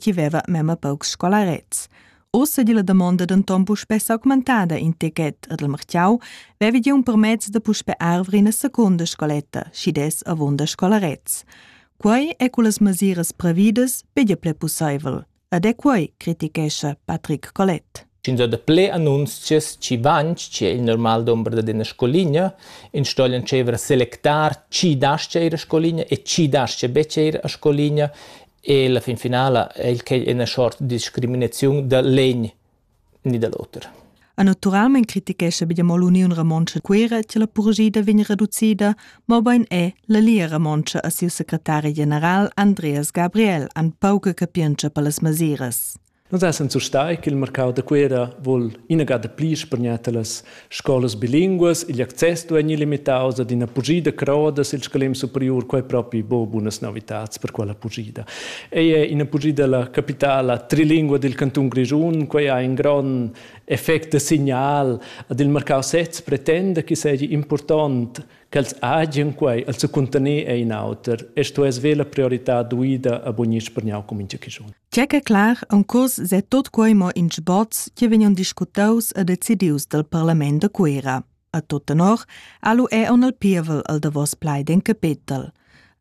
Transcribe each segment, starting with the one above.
chi veva memma paucs scolarets. Ossa di la damonda denton puspè s'augmentada in techet ed il martiau vevi di un permezz da puspè arvre ina seconda scoletta, schi des avunda scolarets. Quei è cu las masiras previdas pedia ple pussaivel. Ed è quei, critichescha Patrick Collet. Sch'ins ha daplè annunzias chi vain tschè il normal dumber dad üna scoligna, ins sto entscheiver a selectar chi das-cha ir a scoligna e chi das-cha betg ir a scoligna e la fin finala è il quai üna sort discriminaziun da l'egn ni da l'oter. E naturalmein critichescha be mo l'Uniun Romontscha Cuira che la purgida vegn reducida, mobein è la Lia Romontscha a siu secretari general Andreas Gabriel an pauca capientscha per las masiras. Nus essan surstai ch'il marcau da Cuera vul inagada pli spargnar talas scolas bilinguas. Igl access duei limitaus ad ina pugida croda sil scalem superiur, quei propi bo bunas novitads per quella pugida. Ei è ina pugida la capitala trilingua dil cantun Grischun, quei ha in grond effect da signal ad il marcau sez pretenda che seigi impurtont ch'els hagen quei el secuntener e in auter e sto es ve la priorità duida a bugnir spergnau cum incha chischun. C'è che clar un curs se tot quei mo in sboz che vegnan discutaus e decidius dal parlament de Cuera. A tot tenor, alu è on el pievel al davos plaid in capitel.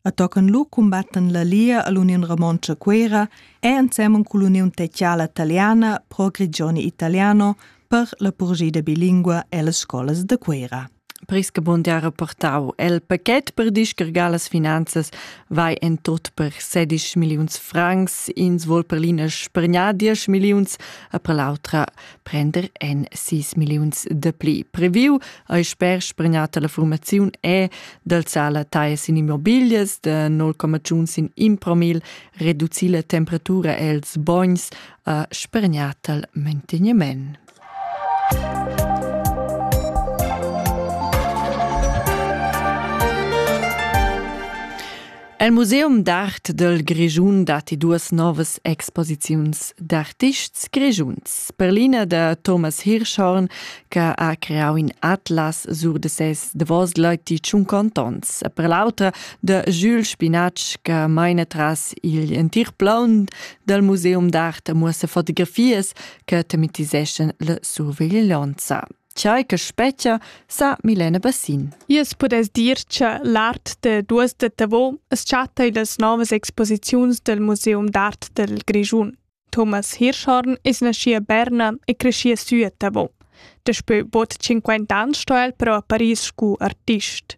A tocan lu combatten la Lia all'Union Romontcha Cuera e ansemmen cu l'Union Teciala Italiana pro Grigioni Italiano per la purgida bilingua e las scolas de Cuera. Pris che bun ha reportau el pachet per discargar las finanzas vai en tut per 16 milliuns francs, ins vol per l'ina spergnar 10 milliuns, e per l'autra prender en 6 milliuns de pli. Previu ei sper spergnata la formaziun è d'alzar la taglias in immobilias de 0,1 in impromil, reducir la temperatura els bogns, e spergnat al manteniment. El Museum d'art del Grischun datti duas novas exposiziuns d'artists grischuns. Per l'ina da Thomas Hirschhorn, che ha creau in atlas sur de ses davos leiti tschunquant onns, e per l'autra de Jules Spinatsch, che maina tras igl entir plaun del Museum d'art e muossa fotografias che tematiseschan la surveglianza. Tgei che spetga, sa Milena Bassin. Jes pudess dir che l'art de duas de Tavò es chatta in las novas exposiziuns del Museum d'art del Grischun. Thomas Hirschhorn is nasci a Berna e cresci sü a Tavò. Daspö bod 50 ans sto el però a Paris scu artist.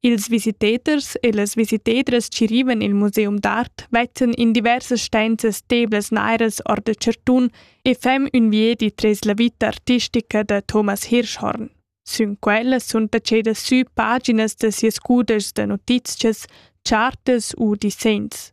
Ils visitaders e las visitadras chi rivan i'l museum d'art vezzen in diversas stanzas steblas nairas or da chartun e fem ün viedi tres la vita artistica da Thomas Hirschhorn. Sün quella sun tachedas sü paginas da sias cudeschs da notizchas, chartas u disegns.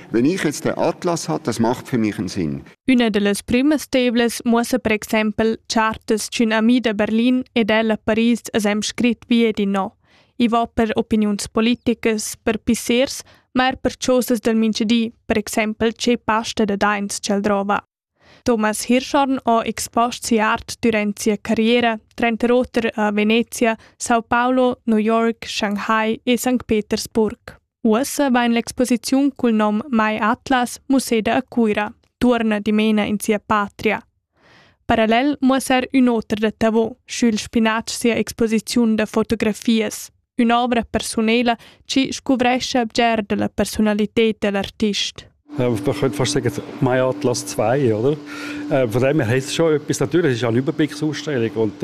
Wenn ich jetzt den Atlas habe, das macht für mich einen Sinn. Una de las primas tevlas muossa per exempel chartas d'ün ami da Berlin ed el a Paris as hem scrit via di no. I va per opiniuns politicas, per pissers, ma er per chosas del minchedi, per exempel che pasta da dains ch'el drova. Thomas Hirschhorn ho expost sia art durant sia carriera, tranter oter a Venezia, Sao Paulo, New York, Shanghai e Sankt Petersburg. Uossa vain l'exposiziun cul nom Mai Atlas museda a Cuira, tuorna dimena in sia patria. Parallel muossar ün oter da Tavau, sch'il spinatsch sia exposiziun da fotografias. Ün'ovra persunela chi scuvrescha bger da la persunalited da l'artist. Äh, man könnte fast sagen, mein Atlas 2, oder? Äh, von dem her heisst es schon etwas. Natürlich ist es eine Überblicksausstellung und dort